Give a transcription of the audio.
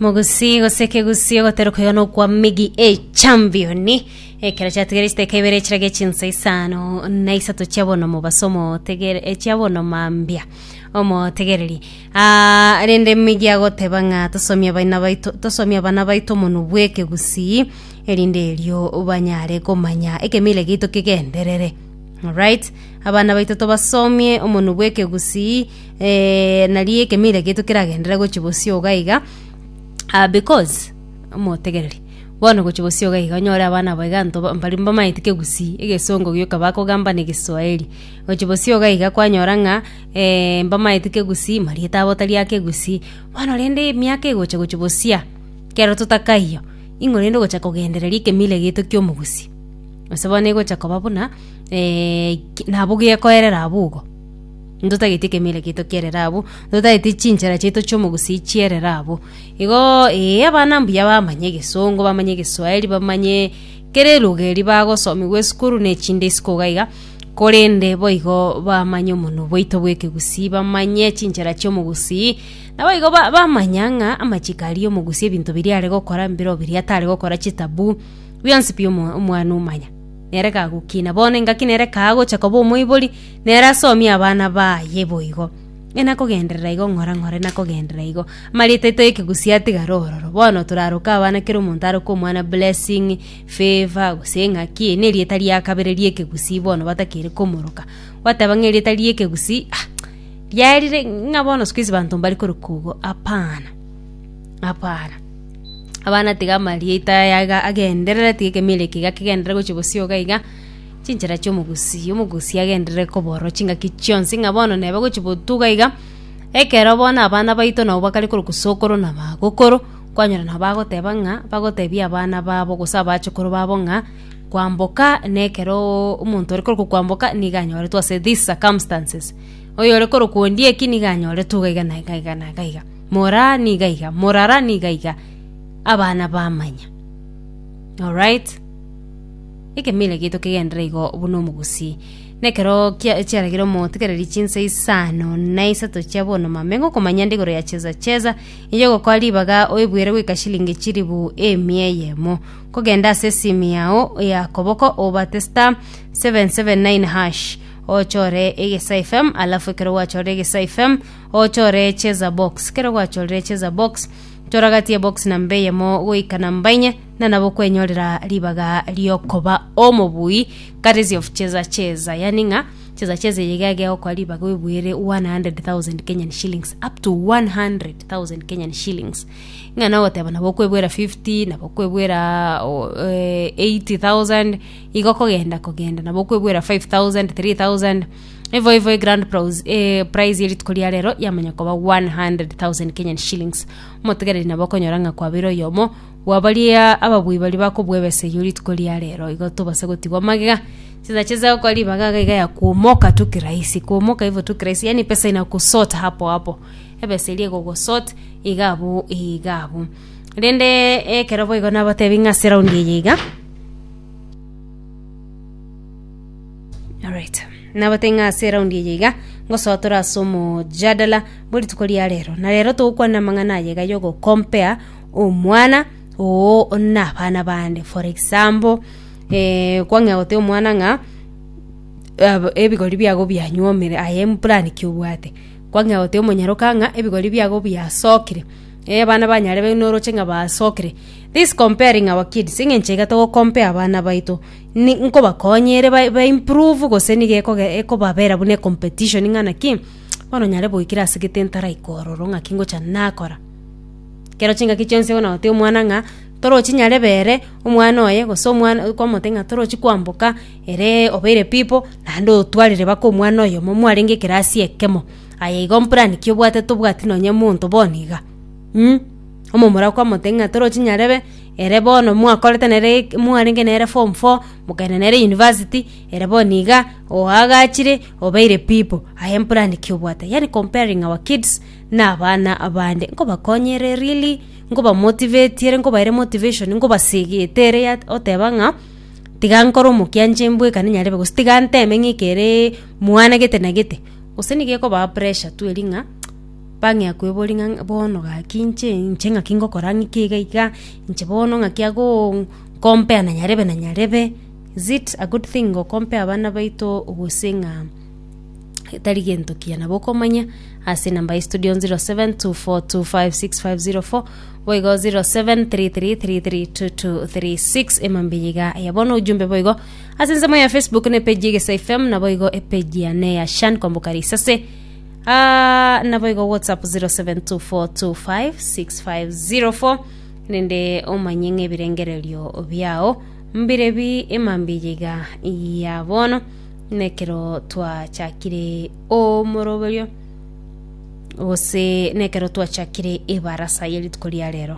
Mogusi gose kegusi ogoteruka iga nokwa migi echambioni ekero chiatigere chiteka ibere chirage chinsa isano na isato chia bono mobaso motegere eh, chia bono mambia omotegereri Ah, rende migi agoteba ng'a tosomie abaina baito tosomie abana baito omonu bw'ekegusi erinde erio banyare komanya ekemila egeito kegenderere Alright, abana baito tobasomie omonu bw'ekegusi eh, nari ekemeira geito keragendere gochi bosio iga iga ah, because motegereri bono gochi bosio iga iga onyore abana abo iga nto mbari mbamaeti kegusii egesongo gioka bakogamba na egeswaeri gochi bosio iga iga kwanyora ng'a eh, mbamaeti kegusii marieta abo tari ake egusii bono rende emiaka egocha gochi bosia kero totakaiyo ing'o rende ogocha kogendereri ekemira geito kia omogusii gose bono egocha koba buna eh, ki- nabo gekoerera abwo igo. Ntotageti ekemeira kiaito kierere abwo, ntotageti chinchera chiaito chiomogusii chierere abwo. Igo ee, abana mbuya bamanye egesongo, bamanye egeswaeri, bamanye kera eluga eria bagosomigwa esukuru na echinde isiko iga iga, korende boigo bamanye omonwe bwaito bw'ekegusii, bamanye chinchera chiomogusii, naboigo ba- bamanya ng'a amachiko aria omogusii ebinto biria are gokora mbero biria tare gokora chitaboo, bionsi pi omo- omwana omanya. Nere kagokina, bono engaki nere kagocha koba omoibori. Nere asomie abana baye boigo, ng'a nakogenderera igo ng'ore, ng'ore nakogenderera igo. Amarieta aito y'ekegusii atigare ororo. Bono toraroke abana kera omonto aroke omwana Blessing, Favour, gose ng'aki, eri nerieta ria kabere ri'ekegusii bono batakeire komoroka. Gwateba ng'a erieta ri'ekegusii ah riarire ng'a bono siku hizi banto mbari koroka obo, hapana, hapana. Abana tiga amarieta aya iga agenderere, tiga ekemerero eke iga kegenderere gochia bosio iga iga. chinchera chi'omogusii, omogusii agenderere koborwa chingaki chionsi ng'a bono nebe gochi botuga iga, ekero bono abana baito nabo bakare korokwa sokoro na bagokoro, kwanyora nabo bagoteba ng'a bagotebia abana babo gose abachukuru babo ng'a kwamboka nekeroooo omonto ore korokwa kwamboka nigo anyoretwe ase this circumstances, oyore korokwa ondieki nigo anyoretwe iga iga na iga iga na iga iga, moraa niga iga, morara niga iga, abana bamanya, alright. Ekemeira giaito kegenderere igo buna omogusii. Na ekero kia- chiaragire omotegereri chinsa isano na isato chia bonomame, ngokomanyande igoro ya Cheza Cheza, inche ogokora ribaga oebuere goika shilingi chilifu emia eyemo. Nkogenda ase esimu yao ya koboko obate star, seven, seven, nine, hash, ochore egesa FM, alafu ekero gwachorire egesa FM, ochore Cheza Box. Ekero gwachorire Cheza Box, toragatie ebox namba eyemo goika namba inye, na nabo kwenyorera ribaga riokoba omobui courtesy of cheza cheza yani ng'a cheza cheza eye iga egegokora ribaga oebuere 100000 kenyan shillings up to 100000 kenyan shillings ng'a nogoteba nabo okoebuera 50 nabo okoebuera o- eh, 80000 igo kogenda kogenda nabo okoebuera 5000 3000 ivo ivo egrand pros eh, prize erituko ria rero yamanya koba 100000 kenyan shillings omotegereri nabo okonyora ng'a kwabeire oyomo Bwa baria ababui baria bakobua ebesa eyio rituko ria reero, igo tobase gotigwa magega. Chinsa chinsa gokora ribaga iga iga ya kuomoka tu kirahisi. Kuomoka hivyo tu kirahisi, yaani pesa inakusort hapo hapo. Ebesa eria egogosort iga abwo iga abwo. Rende ekero boigo nabatebi ng'a ase eraundi eye iga, alright, nabatebi ng'a ase eraundi eye iga, ngosoa tore ase omojadala bwe rituko ria reero. Na reero togokwanera amang'ana aya iga ya ogocompare. omwana oo na abana bande for example eh, kwang'ea gote omwana ng'a ab- ebigori biago bianywomire aye mpurani ki obwate kwang'ea gote omonyaroka ng'a ebigori biago biasokire eh abana ba nyarebe noroche ng'a basokire this comparing our kids eng'encho iga togo compare abana baito ni nkobakonya ere ba- ba improve gose niga ekoge ekobabera buna ecompetition ng'a naki bono nyare goikera asegete ntaraika ororo ng'aki ngocha nakora. Ekero chingaki chionsi bonagotebi omwana ng'a torochi nyarebe ere, omwana oye gose omwana okomotebi ng'a torochi kwamboka ere obeire pipo, naende otwarire baka omwana oyomo mwarenge ekerasi ekemo. Aye igo mpurani ki obwate tobwati nonye monto bono iga mm. Omomura okomotebi ng'a torochi nyarebe ere bono mwakorete nere eke mwarenge nere form four mokaenda nere university ere bono iga oagachire obeire pipo, aye mpurani ki obwate yaani comparing our kids. na abana abande, nkobakonyia ere really, nkobamotivate ere, nkobaere motivation, nkobasegete ere ya oteba ng'a tiga nkore omokianche mbwekane nyarebe gose tiga nteme ng'a ekere mwana gete na gete, gose nigo ekobaa pressure tu eria ng'a bang'ea koebori ng'a bono gaki inche inche ng'aki ngokora ng'iki iga iga, inche bono ng'aki agoo nkompea na nyarebe na nyarebe, is it a good thing go compare abana baito gose ng'a. etari gento kiya nabo okomanya ase enamba ya studio 0724256504 boigo 0733332236 emambia iga ya bono ujumbe boigo ase ensemo ya facebook na epeji egesa fm na boigo epeji ya ne ya shan kwamboka risase Ah, na boigo whatsapp 0724256504 nende omanye ng'ebirengererio biao mbirebi emambia iga ya bono na ekero twachakire omoroberio gose na ekero twachakire ebarasa ye rituko ria rero.